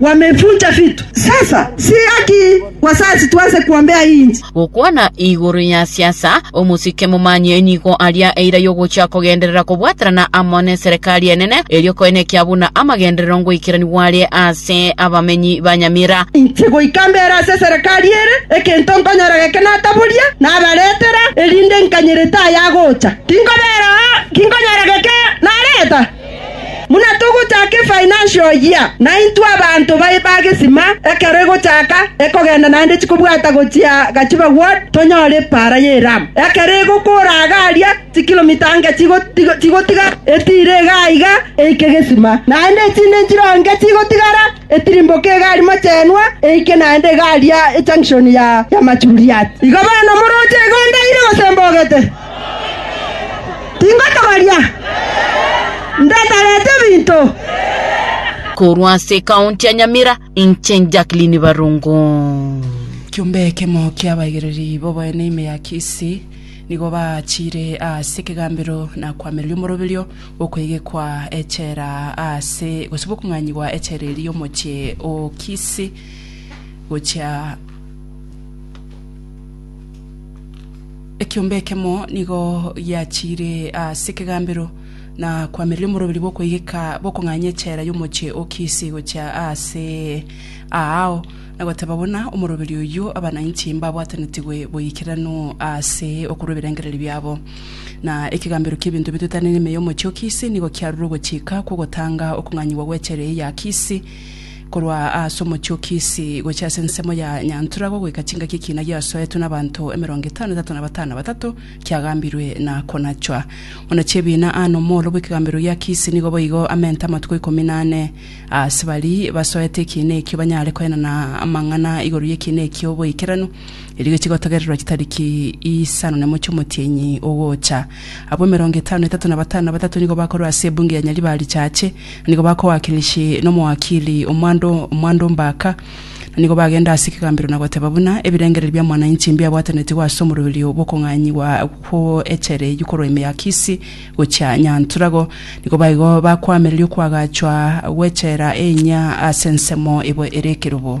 wamevunja vitu. Sasa si haki wazazi tuanze kuombea hii nchi? Gokwana igoro ya siasa, omosike momanyie nigo aria eira yogochia kogenderera kobwaterana amo neserekari enene, erio koene ekia buna amagenderero ngoikeranigwa are ase abamenyi ba Nyamira. Inche goika mbere ase eserekari ere, egento nkonyora geke nataboria nabaretera, erinde nkanyerete ayagocha, tinkobera oo, tinkonyora geke nareta. Buna togochaka efinancial year, naintwe abanto baye bagesima ekero egochaka ekogenda naende chikobwata gochia Gachiba Ward tonyore epaara y'eramu. Ekero egokora iga aria chikilomita inga chigotiga etiire iga aiga eike gesima, naende echinde inchiro inga chigotigara etirimboke iga aria mochenwa eike naende iga aria ejunction ya Machuriat. Igo bono moroche iga ondaire gose mbogete? Tingotogoria, ndeterete ebinto. Korwa ase ekaunti ya Nyamira, inche Jacqueline Barongo. Ekiombe ekemo ki'abaigereri b'oboene ime ya Kisii nigo baachiire ase ekegambero na koamereria omoroberio bw'okoegekwa echela ase gose bw'okong'anyigwa echela eria y'omochie o Kisii gochia Ekiombe ekemo nigo giachiire ase ekegambero na kwamereria omoroberi bw'okoigeka bokong'anya echela y'omochie o Kisi gochia aase aao, na goteba buna omoroberi oyio abanainchi mbabwatanetigwe boikeranu aase okorwa ebirengererio biabo. Na ekegambero ki'ebinto bituetane n'ime y'omochie o Kisi nigo kiarure ogochika kw'ogotanga okong'anyigwa gw'echela eye ya Kisi, Korwa ase omochie o Kisi gochia ase ensemo ya Nyantura gogoika chingaki ekiina giasoetwe n'abanto emerongo etano etato na batano batato kiagambirwe na konachwa. Buna chi'ebiina aa n'omooro bw'ekegambero gia Kisi nigo boigo amente amatuko ikomi na ane ase bari basoete ekiina ekio banyare koenana amang'ana igoro y'ekiina ekio oboikeranu erio gechigotogererwa chitariki isano nemo chi'omotienyi ogocha Abwo emerongo etano na etato na batano na batato nigo bakorwa ase ebunge ya Nyaribari-Chache, na nigo bakowakilishi n'omoakili o Mwando, Mwando Mbaka, na nigo bagenda ase ekegambero na goteba buna ebirengererio bia mwananchi mbiabwatanetigwe ase omoroberio bw'okong'anyigwa kw'echere eyio korwa ime ya Kisii gochia Nyantura. Igo nigo baigo bakoamereria okoagachwa gw'echela eye inya ase ensemo ebo ere ekerogo.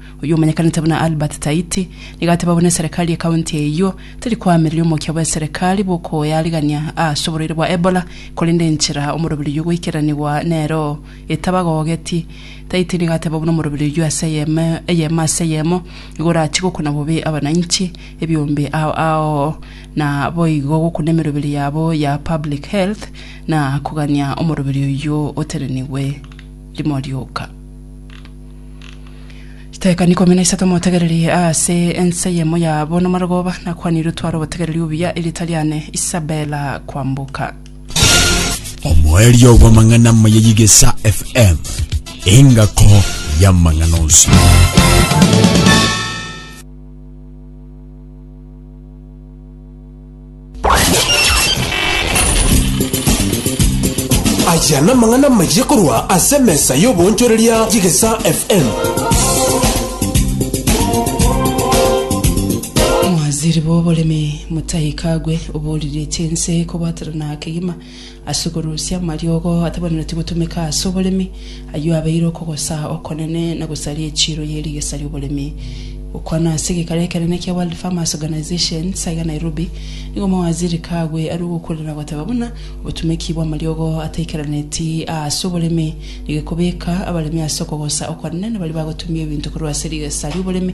Oyio omanyekanete buna Albert Taiti, nigo ateba buna eserekari y'ekaunti eyio teri koamereria omokia bw'eserekari bw'okoyarigania aase oborwaire bwa Ebola, korende enchera omoroberi oyio goikeranigwa nero etabagogeti. Taiti nigo ateba buna omoroberi oyio ase eyemo ase eyemo nigo orachie gokuna bobe abananchi ebiombe ao ao na boigo gokuna emeroberi yabo ya public health na kogania omoroberi oyio otenenigwe rimo rioka. Chidaeka ikomi na isato motegererie ase enseyemo yabo namarogoba, nakwanire otware obotegereri obuya erita riane Isabela kwamboka. Omoerio bw'amang'ana amaya y'Igesa FM, engako y'amang'ana onsi. Aya namang'ana amayia korwa ase emesa y'oboonchoreria y'Egesa FM. Omwaziri bw'oboremi Mutahi Kagwe oboriretie ense kobwaterana kegima Ase korusia amariogo atabanenetie gotumeka ase oboremi, ayio abeire okogosa okonene na gosaria echiiro ye rigesa ri'oboremi. Gokwana ase egekaro ekenene kia World Farmers Organization sa iga Nairobi, nigo omowaziri Kagwe arue ogokuuria na goteba buna obotumeki bw'amariogo ataikaraneti aase oboremi negekobeka abaremi ase okogosa okonene na baria bagotumia ebinto korwa ase rigesa ri'oboremi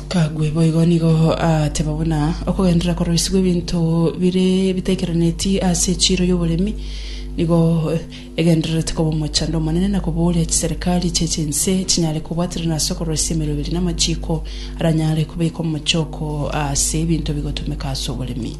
Kagwe boigo nigo aateba buna okogenderera koroisigwa ebinto bire bitaikeraneti ase echiiro y'oboremi nigo egendererete koba omochando omonene na kobooria chiserikari chie chinse chinyare kobwaterana ase okoroisia emeroberi na amachiiko aranyare kobekwa mochoko ase ebinto bigotumeka ase oboremi.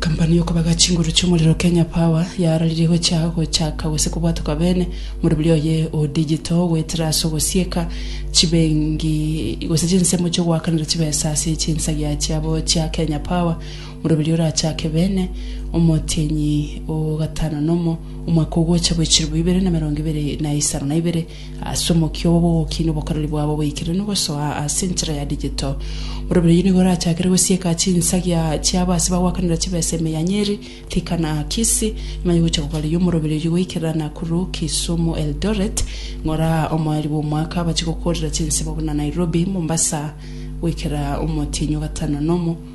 Company yokobaga chinguru chiomorero Kenya Power yaararirie gochia gochaka gose kobwatwa kabene morobiri oye o digital goetera ase ogosieka chibengi gose chinsemo chiogoakanera chibesa ase chinsagia chiabo chia Kenya Power morobiri orachake bene omotienyi o gatano nomo omwaka ogocha boichirwa ibere na emerongo ibere na isano na ibere Ase omokia obo bw'ogokina obokoreri bwabo boikeranu gosoa ase enchera ya digital, borobiro oyio nigo orachakere gosieka chinsagia chiabo ase bagwakanera chibesa ime ya Nyeri, Thika na Kisii, ng'ai gocha kogareria omorobiro oyio goikerera Nakuru, Kisumu, Eldoret, ng'ora omoeri bw'omwaka abache gokoorera chinsemo buna Nairobi, Mombasa goikera omotienyi o gatano nomo.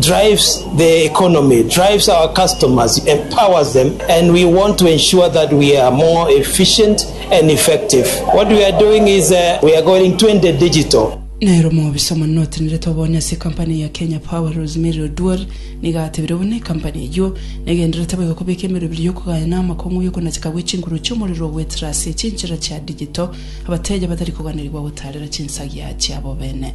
drives the economy, drives our customers, empowers them and we want to ensure that we are more efficient and effective. What we are doing is uh, we are going 20 digital. Nero omobisa omonene otenerete obonye ase ecompany ya Kenya Power Rosemary Oduor nigo atebire buna ecompany eyio negendererete boigo kobeka emerobiri y'okogaya na amakong'u y'okonacheka gwe chinkuru chi'omorero ogwetera ase chinchera chia digital abateja batari koganirigwa gotaarera chinsagia chiabo bene.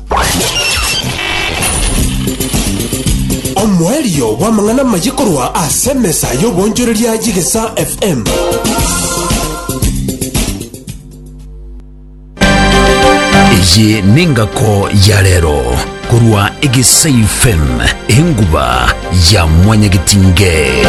Omoerio bw'amang'ana amaye korwa ase emesa y'oboonchoreria y'Egesa FM. Eye nengako ya rero korwa Egesai FM enguba ya mwanyagetinge.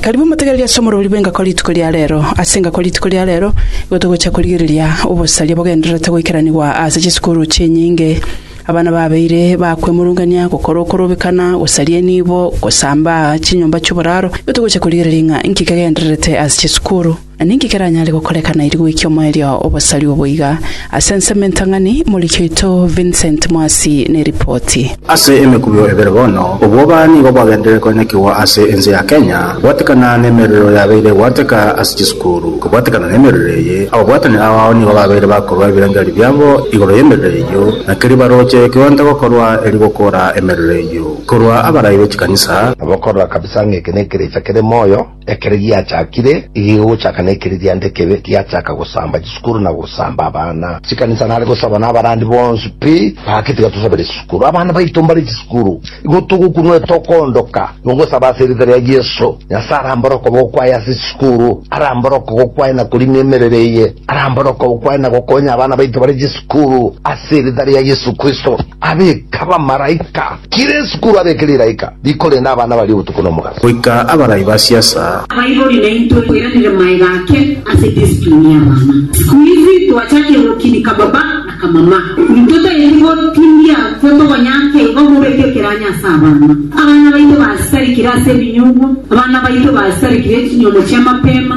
Karibu motegereri ase omorori bw'engako rituko ria reero. Ase engako rituko ria reero igo togochia korigereria obosaria bogendererete goikeranigwa ase chisukuru chinyinge. Abana babeire bakwemurungania, gokora okorobekana, gosaria enibo, gosambaa chinyomba chi'oboraro. Igo togochia korigereria ng'a inki kegendererete ase chisukuru. Na ninki keranyare gokoreka nairi goikia omoerio obosarigwe boiga? Ase ensemo entang'ani, moriki oito Vincent Mwasi neripoti. Ase emekurio ebere bono, obwoba nigo bwagenderire koinekigwa ase ense ya Kenya, gwatekana nemerero yabeire egwateka ase chisukuru. Kobwatekana nemerero eye, ababwatani abao nigo babeire bakorua ebirengererio biabo igoro y'emerero eyio, na keria baroche kionto gokorwa eri gokora emerero eyio korwa abarai be chikanisa. Nabo korora kabisa ng'a eke nekerecha kere moyo. Ekero giachakire, egegochaka na ekereria nde kebe giachaka gosamba chisukuru na gosamba abana. Chikanisa nare gosaba na abarandi bonsi pi, Gaki tiga tosabere chisukuru. Abana baito mbare chisukuru, igo togokunwa etokoondoka. Nogosaba ase erieta ria Yeso, Nyasae arambore okoboko kwaye ase chisukuru, arambore okogoko kwaye na korina emerero eye, arambore okoboko kwaye na gokonya abana baito bare chisukuru, ase erieta ria Yeso Kristo. Abeke abamaraika kera esukuru, abeke riraika. Riko rende abana baria obotuko na omogaso. Goika abarai ba siasa. Abaibori naintwe toiranere maega ake ase discipline y'abana. Sikuizi twachakire gokinika baba na kamama. Ntotaeti gotindia totogonyanke igo mobeke ekeranyo ase abana. Abana baito basitarikire ase ebinyugwa. Abana baito basitarikire echinyuomo chi'amapema.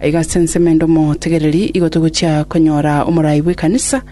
Aiga ase ensemo ende omotegereri, igo togochia konyora omorai bw'ekanisa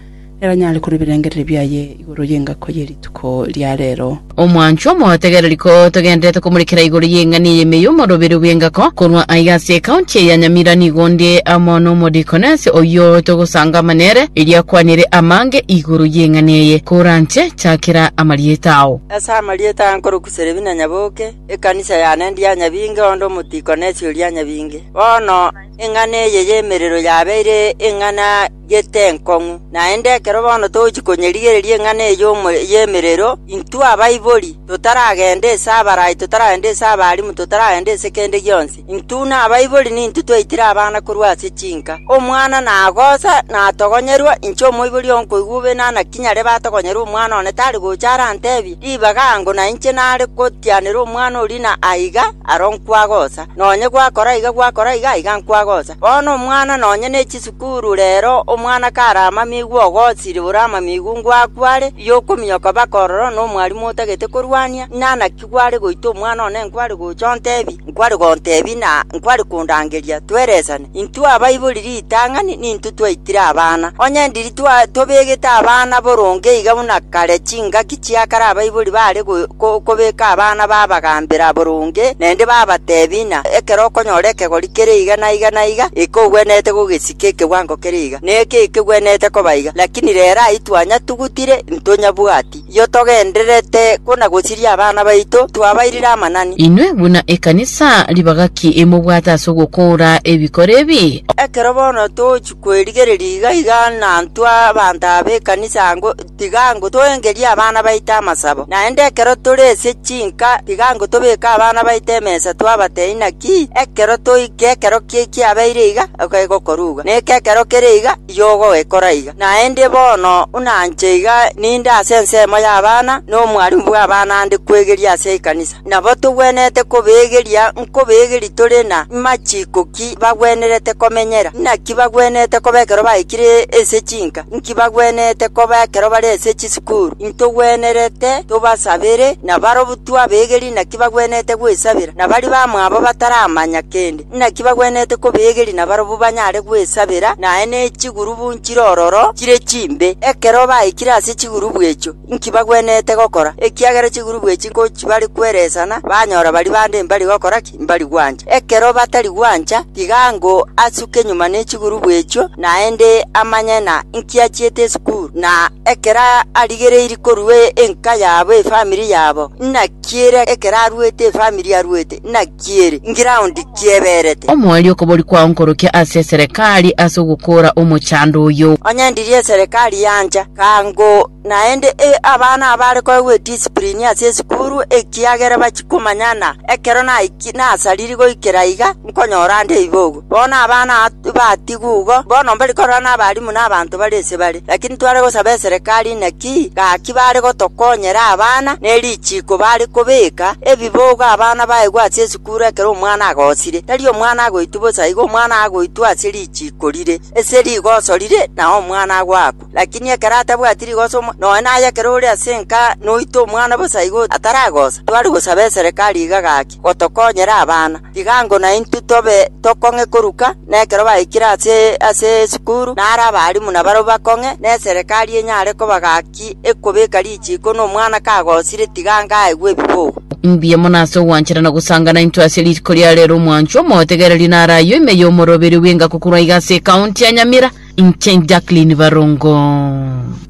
neranyare korua ebirengereri biaye igoro y'engako ye rituko ria reero. Omwanchwa omotegereri, ko togendererete komorekera igoro y'eng'ani eye ime y'omoroberi bw'engako, korwa aiga ase ekaunti eye ya Nyamira nigo onde amo n'omodikonesi oyio togosangama nere, erio akwanere amange igoro y'eng'ani eye. Koranche, chakera amarieta ao. Ase amarieta aa nkorokuseria buna nyaboke, Ekanisa yane ndia nyabinge onde omotiko ne chiuria nyabinge. Bono eng'ana eye y'emerero yabeire eng'ana y'etenkong'u. Naende ekero bono togochia konyerigereria eng'ana eye y'emerero, intwe abaibori, totaragenda ase abarai, totaragenda ase abarimu, totaragenda ase kende gionsi, Intwe buna abaibori nintwe twaitire abana korwa ase chinka. Omwana nagosa natogonyorwa, inche omoibori oo nkoigwa obe nana kinyare batogonyorwe omwana one tari gocha arantebie ribaga ango na inche nare gotianera omwana oria na aiga aro nkwagosa. Nonye gwakora iga gwakora iga aiga nkwagosa. Bono omwana nonye ne chisukuru rero omwana kare amamigu ogosire ore amamigu ngwakware, ri'okominyoka baka ororo nomwarimu otagete korwania, inana ki? Tikware goita omwana one nkware gocha ontebi, nkware gontebi na nkware kondangeria tweresane. Intwe abaibori ritang'ani nintwe twaitire abana. Onye ndiri tobegete abana boronge iga buna kare chingaki chia kare abaibori bare kobeka abana babagambera boronge naende babatebi ng'a ekero okonyora ekegori kere iga na iga na iga, eke ogwenerete gogesika ekebwango kere iga, na eke ekegwenerete koba iga, lakini rero ayio twanyatugutire, ntonyabwati. Inchuo togendererete kona-gosiria abana baito, twabairire amanani. Inwe buna ekanisa, ribaga ki mobwate ase ogokoora ebikoro ebi? Ekero bono togochia kwerigereria iga iga nantwe abanto aba ekanisa ango, tiga ango toengerie abana baito amasabo. Naende ekero tore ase chinka, tiga ango tobeke abana baito emesa twabatebia inaki ekero toike ekero kiabeire iga, egokoruga, na eke ekero kere iga, y'ogoekora iga. Naende bono buna inche iga ninde ase ensemo y'abana, nomwarimu bw'abana ande kwegeria ase ekanisa, nabo togwenerete kobeegeria nkobeegeria tore na machiko ki bagwenerete komenyera, naki bagwenerete koba ekero baikire ase chinka, inki bagwenerete koba ekero bare ase chisukuru. Intogwenerete tobasabere, na barabwo twabeegeria naki bagwenerete gwesabera, na baria bamwabo bataramanya kende. Naki bagwenerete kobeegeria nabarabwo banyare gwesabera, naye ne chigurubu nchire ororo chire chimbe. Ekero baikire ase chigurubu echio, inki bagwenerete gokora? Ekiagera chigurubu echi nkochibare kweresana, banyora baria bande mbari gokora ki? Mbari gwancha. Ekero batari gwancha, tiga ango asuke nyuma ne chigurubu echio, naende amanye na inki achiete esukuru. Na ekero arigereiri korua enka yabo, efamiri yabo, inaki ere ekero aruete efamiri aruete? Inaki? kieri ngiraundi kieberete. Omwori okobori kwao nkorokia ase eserekari ase ogokoora omochando oyo. Onye ndirie eserekari yancha, kaango naende e abana abare koegwa edisiprini ase esukuru, ekiagera bachia komanya ng'a ekero naiki nasariri goikera iga, nkonyora ande ibogo. Bono abana batiga-ugo bono mbari korora nabarimu na abanto bare ise bare, lakini tware gosaba eserekari inaki gaki bare gotokonyera abana ne richiiko bare kobeka ebibogo abana baegwe ase esukuru ekero omwana agosire, tari omwana agoitwa bosa, igo omwana agoitwa ase richiiko rire, ase rigoso rire na omwana agoakwa. Lakini ekero atabwati rigoso omo, noe naye ekero ore ase enka noite omwana bosa igo ataragosa, tware gosaba eserekari iga gaki. gotokonyera abana. Igango naintwe tobe tokong'e koruka, na ekero baikire ase esukuru naro abarimu nabarabwo bakong'e, na eserekari enyare koba gaki ekobeka richiiko na omwana kagosire tigango aegwe ebibogo. Mbuya mono ase ogwanchera na gosanga naintwe ase riko ria rero omwanchwa omotegereri naro ayio ime y'omoroberi bw'enga kokorwa iga ase ekaunti ya Nyamira, inche Jacqueline Barongo.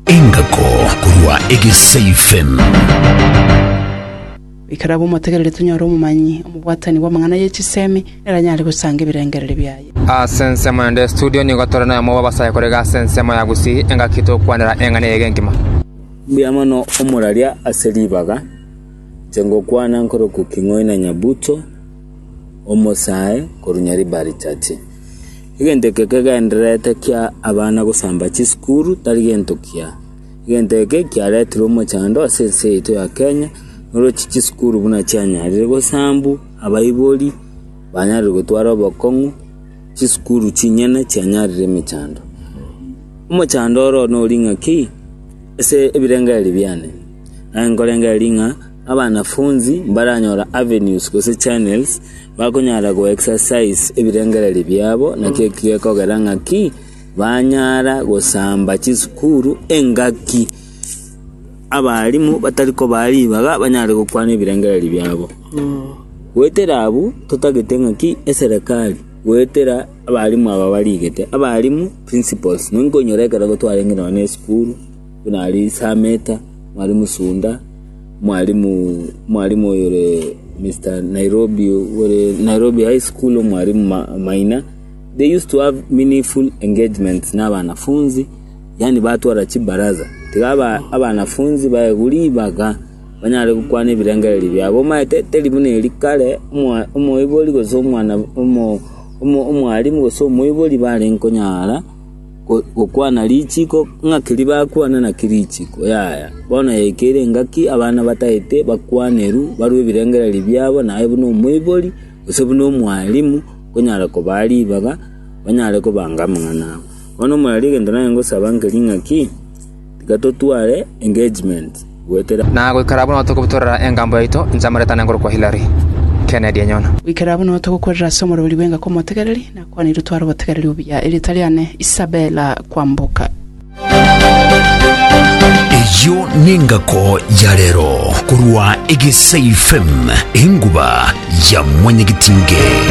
Engako korwa Egesaifem. Ekero abamotegereri tonyore omomanyi omobwatani bw'amang'ana ye chisemi, neranyare gosanga ebirengererio biaye. Ase ensemo ende studio nigo tore noyomo bw'abasae korega ase ensemo ya Gusii engaki togokwanera eng'ana eye egenkima. Mbuya mono omoraria ase ribaga, inche ngokwana nkorokwa King'oina Nyabuto, omosae korwa Nyaribari Church. Egento eke kegendererete kia abana gosamba chisukuru tari gento kiya. Egento eke kiaretirwe omochando ase ense yaito ya Kenya, oroche chisukuru buna chianyarire gosambu abaibori banyarire gotwara obokong'u, chisukuru chinyene chianyarire emechando. Omochando oro nori ng'aki ase ebirengeri biane, naye nkorengeri ng'a abanafunzi mbaranyora avenues gose channels bakonyara go exercise ebirengereri biabo, naki eki gekogera ng'aki. Banyara gosamba chisukuru engaki, abarimu batari kobaa ribaga banyare gokwana ebirengereri biabo. Goetera abwo, totagete ng'a ki? Eserekari goetera abarimu aba barigete. Abarimu, principals, nigo nkonyora ekero gotwarenge nonye esukuru, buna aria Isameta, mwarimu Sunda, mwarimu mwarimu oyore Mister Nairobi ore Nairobi High School, omwarimu Ma- Maina. They used to have meaningful engagements nabanafunzi, yaani batwara chibaraza, tiga abanafunzi baegwe ribaga banyare gokwana ebirengererio biabo. Omaete teri buna eri kare, omoibori gose omwalimu gose omoibori barenge konyara gokwana richiko, ng'a keri bakwana naki richiko, yaya. Bono yaikire engaki abana bataete bakwaneru barwe ebirengererio biabo naye buna omoibori gose buna omwalimu. Nkonyare kobaa ribaga, banyare kobanga amang'ana abo. Bono omorari egento naye ngosaba nkeri ng'aki, tiga totware engagement goetera amo. Na goikera buna togobutorera engambo yaito inche amareta nengoro kwa Hillary, Kennedy enyona. Goikera buna togokwerera ase omorweri bw'engaki omotegereri, nakwaneirwe tware obotegereri obuya. Erieta riane, Isabella Kwamboka. Eyio nengako ya rero korwa Egesaifem enguba ya mwanyagetinge.